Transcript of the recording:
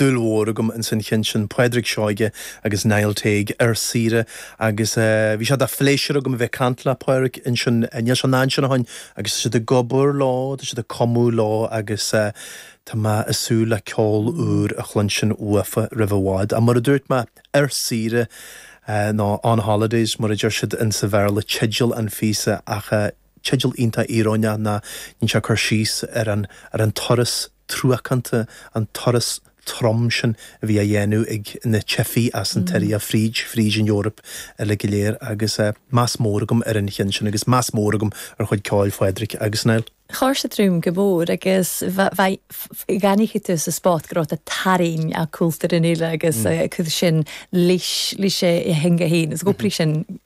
dúil mhór agam ins an cheann sin, Pádraig Seoige agus Niall Teague ar saoire agus bhí sé de phléisiúr agam a bheith ag caint le Pádraig ansin, níl sé an fhad sin ó shoin agus tá siad ag obair leo, tá siad ag cumadh leo agus tá mé ag súil le ceol úr a chluinstin uafa roimh i bhfad. Ach mar a dúirt mé, ar saoire nó on holidays mar a deir siad insa Bhéarla teideal an phíosa ach eh. Teideal iontach íoróineach ná níonn sé cur síos ar an turas truacánta, an turas trom sin a bhí á dhéanamh ag na teifigh as an tSiria fríd fríd an Eoraip uile go léir agus meas mór agam ar an cheann sin agus meas mór agam ar chuid ceoil Phádraig agus Niall. Char sa Droim go mór agus go n-aithneochadh tú sa spot go raibh tú ag tarraingt ar chultúr an fhile agus sin leis a theanga fhéin agus go bhfios sin,